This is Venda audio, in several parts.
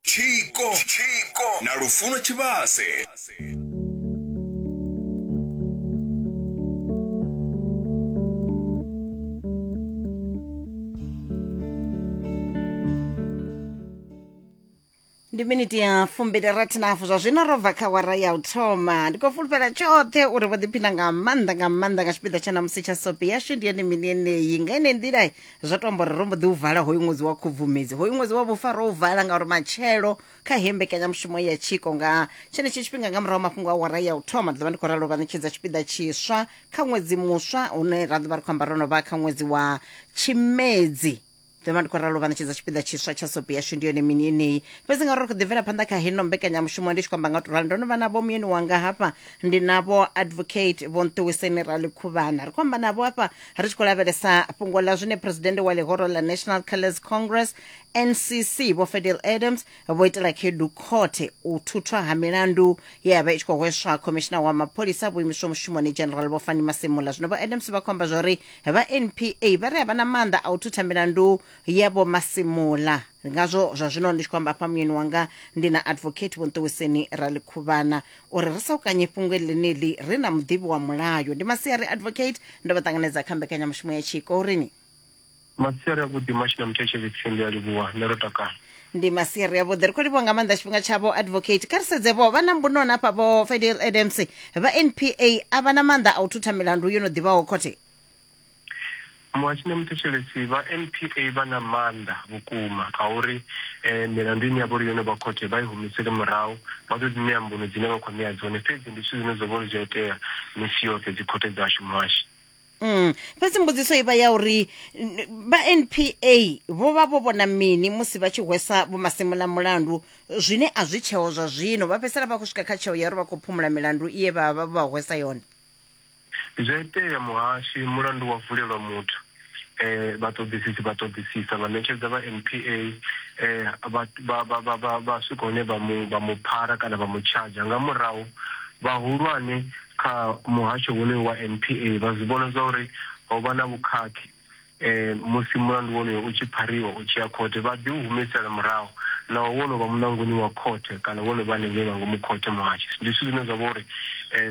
tshiko tshiko na lufuno tshivhase ndi miniti ya fumbili rathi na hafu zwa zwino ro bva kha wara ya u thoma ndi khou fulufhela tshoṱhe uri vho ḓiphina nga maanḓa nga maanḓa nga tshipiḓa tsha namusi tsha sopi yashu ndi yone mini yeneyi nga ine nḓila zwo to amba uri ro mbo ḓi u vala hoyu ṅwedzi wa khubvumedzi hoyu ṅwedzi wa vhufa ro u vala ngauri matshelo kha he mbekanyamushumo ya tshiko nga tshenetshi tshifhinga nga murahu mafhungo a wara ya u thoma ndi ḓovha ndi khou ralo vha ṋetshedza tshipiḓa tshiswa kha ṅwedzi muswa une ra ḓovha ri khou amba ro no vha kha ṅwedzi wa tshimedzi ḓovha ndi khou ralo vha ṋetshedza tshipiḓa tshiswa tsha sopi yashu ndi yone mini yeneyi fhedzi ngauri ri khou ḓi bvela phanḓa kha heno mbekanyamushumo ndi tshi khou amba nga u to rali ndo no vha navho muyeni wanga hafha ndi navho advocate vho nṱuwiseni rali khuvhana ri khou amba navho hafha ri tshi khou lavhelesa fhungo ḽa zwine presidennde wa ḽihoro ḽa national colours congress ncc vho fedel adams vho itela khedu khothe u thuthwa ha milandu ye ya vha i tshi khou hweswa khomishina wa mapholisa vho imiswa mushumoni general vho fani masimula zwino vho adams vha khou amba zwa uri vha npa vha ri a vha na maanḓa a u thutha milandu ya vho masimula ndi ngazwo zwa zwino ndi tshi khou amba afha muyeni wanga ndi na advocate vhonṱuwiseni ralikhuvhana uri ri sa u kanye fhungo ḽeneḽi ri na muḓivhi wa mulayo ndi masiari advocate ndo vha ṱanganedza kha mbekanyamushumo ya tshiko urini masiari avhuḓi mashina muthetsheli tsindi a livhuwa nṋe ro takala ndi masiari avhuḓi ri khou livhuwa nga maanḓa tshifhinga tshavho advocate kha ri sedze vho vha na mbunoni hafha vho fidel adams vha npa a vha na maanḓa a u thutha milandu yo no ḓivhaho khothe muhashine muthetshelesi vha npa vha na maanḓa vhukuma a uri um milandu ine ya vha uri yo no vha khothe vha i humisele murahu vha ḓo dzi ṋea mbuno dzine vha khou ṋea dzone fhedzi ndi zwithu zwine zwo vha uri zwi a itea misi yoṱhe dzikhothe dzashu muhashi Mm. fhedzi mbudziso i vha ya uri n- vha npa vho vha vho vhona mini musi vha tshi hwesa vhomasimula mulandu zwine a zwi tsheo zwa zwino vha fhedzisela vha khou swika kha tsheo ya uri vha khou phumula milandu iye vha vha vha hwesa yone zwi a itea muhashi mulandu wa vulelwa muthu eh vhaṱoḓisisi vha ṱoḓisisa vha ṋetshedza vha npa eh vha vha- vha- vha- vha- vha swika hune vha mu vha mu phara kana vha mu tshadzha nga murahu vhahulwane kha muhasho wonoyo wa NPA vha zwi vhona zwa uri ho vha na vhukhakhi musi mulandu wonoyo u tshi phariwa u tshi ya khothe vha ḓi u humisela murahu naho wo no vha muṋangoni wa khothe kana wo no vha hanengei nga ngomu khothe muhasho ndi zwithu zwine zwa vha uri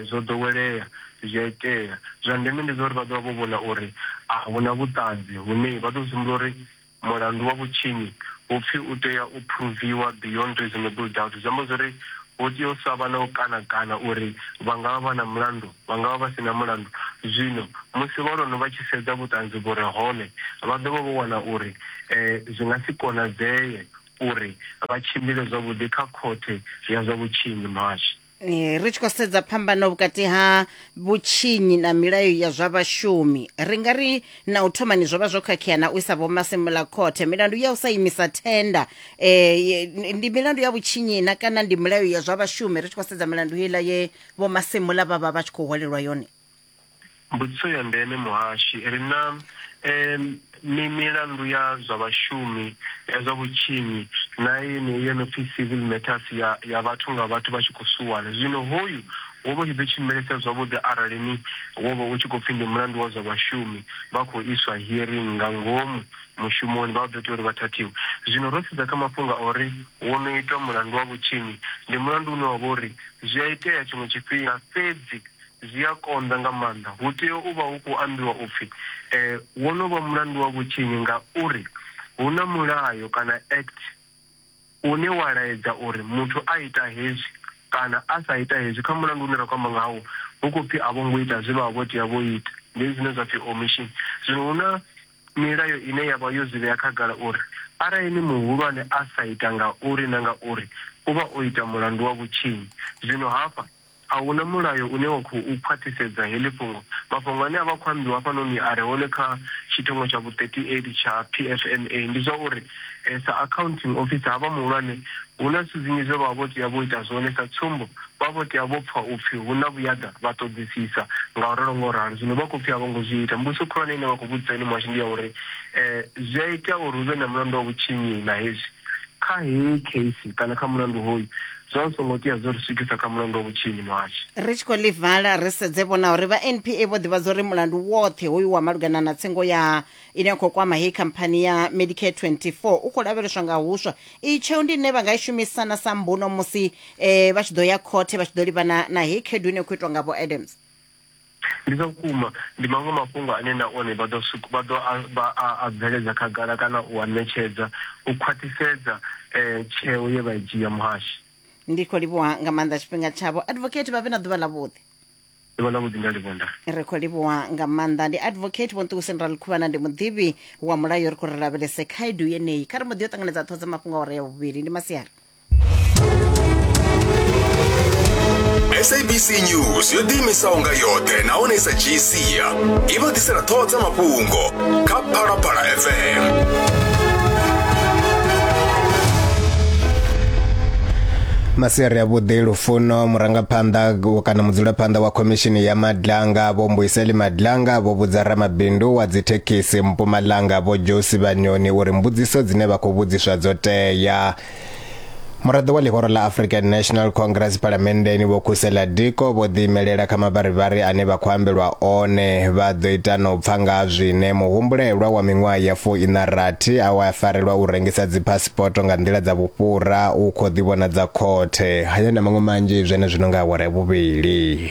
zwo ḓowelea zwi a itea zwa ndeme ndi zwa uri vha ḓo vha vho vhona uri a hu na vhuṱanzi hune vha ḓo humbula uri Mulandu wa vhutshinyi hu pfi u tea u phuruviwa beyond reasonable doubt, zwi amba zwori hu tea u sa vha na u kana-kana uri vha nga vha vha na mulandu, vha nga vha vha si na mulandu. Zwino musi vhaloni vha tshi sedza vhuṱanzi vhu re hone, vha ḓo vha vho wana uri zwi nga si konadzee uri vha tshimbile zwavhuḓi kha Khothe ya zwa Vhutshinyi. Muhashi. Eh, ri tshi khou sedza phambano vhukati ha vhutshinyi na milayo ya zwa vhashumi ri nga ri na u thomani zwo vha zwo khakhea na u isa vhomasimula khothe milandu ya u sa imisa thenda um ndi milandu ya vhutshinyi na kana ndi milayo ya zwa vhashumi ri tshi khou sedza milandu heiḽa ye vhomasimula vha vha vha tshi khou hwalelwa yone Mbudziso ya ndeme, Muhashi, ri na mi milandu ya zwa vhashumi, ya zwa vhutshinyi na yeneyi yo no pfi Civil Matters ya ya vhathu nga vhathu vha tshi khou suwana. Zwino hoyu wo vha u tshi ḓo tshimbilesa zwavhuḓi arali ni wo vha u tshi khou pfi ndi mulandu wa zwa vhashumi vha khou iswa hearing nga ngomu mushumoni vha ḓo tea uri vha thathiwe. Zwino ro sedza kha mafhungo a uri wo no itwa mulandu wa vhutshinyi, ndi mulandu une wa vha uri zwi a itea tshiṅwe tshifhinga fhedzi Zwi a konḓa nga maanḓa. Hu tea u vha hu khou ambiwa u pfi, E, wo no vha mulandu wa vhutshinyi ngauri hu na mulayo kana act une wa laedza uri muthu a ita hezwi kana a sa ita hezwi. Kha mulandu une ra khou amba ngawo, hu khou pfi a vho ngo ita zwe vha vha vho tea vho ita. Ndi hezwi zwine zwa pfi omission. Zwino hu na milayo ine ya vha yo zwi vhea khagala uri arali ni muhulwane a sa ita ngauri na ngauri, u vha o ita mulandu wa vhutshinyi. Zwino hafha A hu na mulayo une wa khou khwaṱhisedza heḽi fhungo. Mafhungo ane a vha a khou ambiwa hafhanoni a re hone kha tshithongo tsha vhu-38 tsha PFMA ndi zwa uri sa Accounting Officer havha muhulwane hu na zwithu zwinzhi zwe vha vha vho tea vho ita zwone. Sa tsumbo, vha vho tea vho pfa u pfi hu na vhuyaḓa vha ṱoḓisisa nga u ralo nga u ralo. Zwino vha khou pfi a vho ngo zwi ita. Mbudziso khulwane ine vha khou vhudzisa yone muhasho ndi ya uri zwi a itea uri hu vhe na mulandu wa vhutshinyi na hezwi? Kha heyi case kana kha mulandu hoyu zwa hu songo tea zwo ri swikisa kha mulandu wa vhutshinyi muhasho ri tshi khou ḽi vala ri sedze vhona uri vha npa vho ḓivhadza uri mulandu woṱhe hoyu wa malugana na tsengo ya ine ya khou kwama heyi khamphani ya medicare 24 u khou lavheleswa nga huswa iyi tsheo ndi ine vha nga i shumisana sa mbuno musi um vha tshi ḓo ya khothe vha tshi ḓo livhana na heyi khaedu ine ya khou itwa nga vho adams Ndi zwa vhukuma, ndi maṅwe mafhungo ane na one vha ḓo vha ḓo a vha a a bveledza khagala kana u a ṋetshedza u khwaṱhisedza tsheo ye vha i dzhia, Muhashi. Ndi khou livhuha nga maanḓa tshifhinga tshavho. Advocate vha vhe na ḓuvha ḽavhuḓi. Ḓuvha ḽavhuḓi nda livhuwa nda. Ri khou livhuwa nga maanḓa. Ndi Advocate Vho Nṱuwiseni Raḽikhuvhana, ndi muḓivhi wa mulayo. Ri khou ri lavhelese khaedu yeneyi. Kha ri mbo ḓi yo ṱanganedza ṱhoho dza mafhungo awara ya vhuvhili. Ndi masiari. sabc news yo ḓiimisaho nga yoṱhe nahone sa dzhii sia i vha ḓisela ṱhoho dza mafhungo kha phalaphala fm masiari a vhuḓi lufuno murangaphanḓa kana mudzulaphanḓa wa khomishini ya madlanga vho mbuiseli madlanga vho vhudza ramabindu wa dzithekhisi mpumalanga vho josi vhanyoni uri mbudziso dzine vha khou vhudziswa dzo tea muraḓo wa ḽihoro ḽa african national congress phalamenndeni vho khusela diko vho ḓiimelela kha mavharivhari ane vha khou ambelwa one vha ḓo ita na u pfa nga ha zwine muhumbulelwa wa miṅwaha ya fuiṋa rathi a wa farelwa u rengisa dziphasipoto nga nḓila dza vhufhura u khou ḓivhonadza khothe haya na maṅwe manzhi zwenezwino nga awara ya vhuvhili